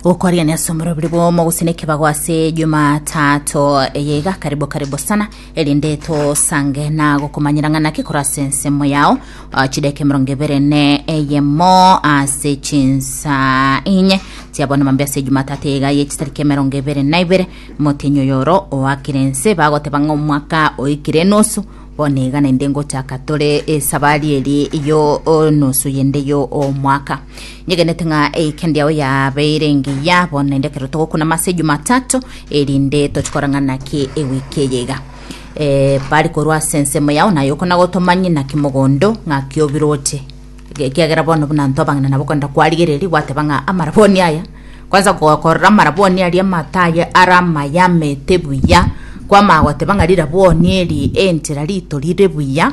gokoria ne asomero biri bomo gose ne kibago ase jumatatu eye iga karibu karibu sana erinde tosange na gokomanyera ng'ana ki kora ase ensemo yao Ah, chideke mirongo ibere ne eyemo ase chinsa inye tiabona mambe ase jumatatu eye iga ye chitariki emerongo ibere na ibere motenyi oyoro oakire ense bagoteba ng'a omwaka oikire enusu Bono iga naende ngochaka tore esabari eri yo o, nusu yende yo omwaka nyegenete ng'a eikendi yao yabeire engiya bono naende ekero togokuna mase jumatatu erinde tochi korang'ana naki ewiki eye iga Eh, bari korwa ase ensemo yao naye okona gotomanye naki mogondo ng'aki obirwe ote Ekiagera bono buna intwe abang'ina nabo kwenda kwarigereria gwateba ng'a amaraboni aya kwanza gokorora amaraboni aria amato aye are amayamete buya kwamanya goteba ng'a rirabwoni eri enchera ritorire buya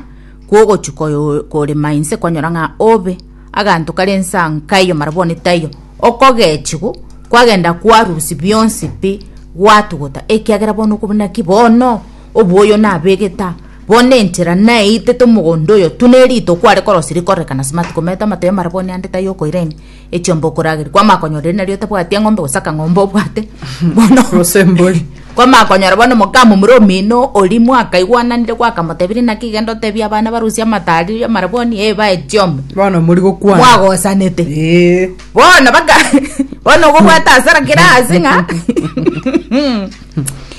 kwogochia koyo- korema inse kwanyora ng'a obe aganto kare inse aa nkayo amarabwoni taiyo okogechiwu kwagenda kwarusia bionsi pi gwatugutana ekiagera bono okobuna ki bono oboyo nabegete aa. Bono enchera naeite tomogondo oyo tu nerito kware korosia rikorereka nase matuko maito amatoya mara bono ande tai okoira ime echiomba okorageria kwamanya konyora eri nario otabwati eng'ombe gose akang'ombe obwate bono Gose mbori. kwamanya konyora bono moka momura omino oria mwakaigwananire gwakamotebirie naki genda otebie abana barusie amato aria mara bono ee bae chiombe Bono mori gokwana. mwagosanete Ee. bono baka bono okobwata hasara kera ase ng'a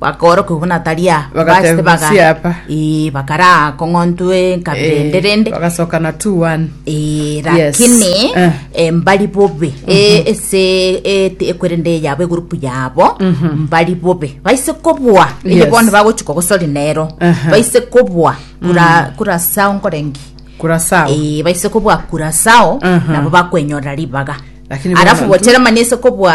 bakooroka buna tari aa Bagateba, Bas- baga- "Siapa?" Ee, bakaraa kong'ontwe nkaberende Eh, rende bagasokana 2-1 Ee, Yes. lakini Eh. eh, mbari bobe Eh, ese eh, ti- ekwerende yabo egurupu yabo mbari bobe baise kobua eye Yes. bono bagochuka gosori nero Aha. baise kobua kura kura sao nkorengi kurasao Eh, baise kobua kura sao Aha. nabo bakwenyorera ribaga Lakini arafu bono tu- botere mani ase kobua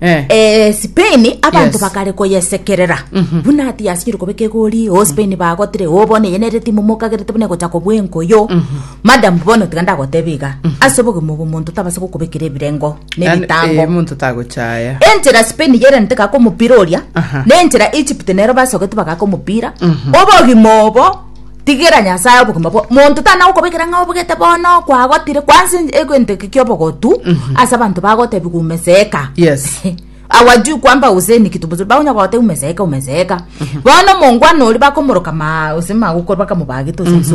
Eh. Eh, spain abanto Yes. bakare koyesekerera buna ati yasinyire kobeka egori o spain bagotire o bono eye nere timu mokagerete buna egocha kobua enkoyo madam bono tiga ndagoteba iga ase obogima obo omonto tabasa gokobekera ebirengo Yani, eh, nebitango omonto tagochaya enchera spain yerente gaka omopira oria Aha. nenchera egypt nero basogete bagaka omopira obogima obo tigera nyasaye obogima bwa monto tana gokobekera ng'a obogete bono kwagotire kwanza en- egento eke kiobogotu ase abanto bagotebigwa umeseeka Yes. awajui kwamba useni kitu mzuri bagonya gote umeseeka umeseeka bono omongwana oria bakomoroka ma ase magokoro bakamobagete ase ense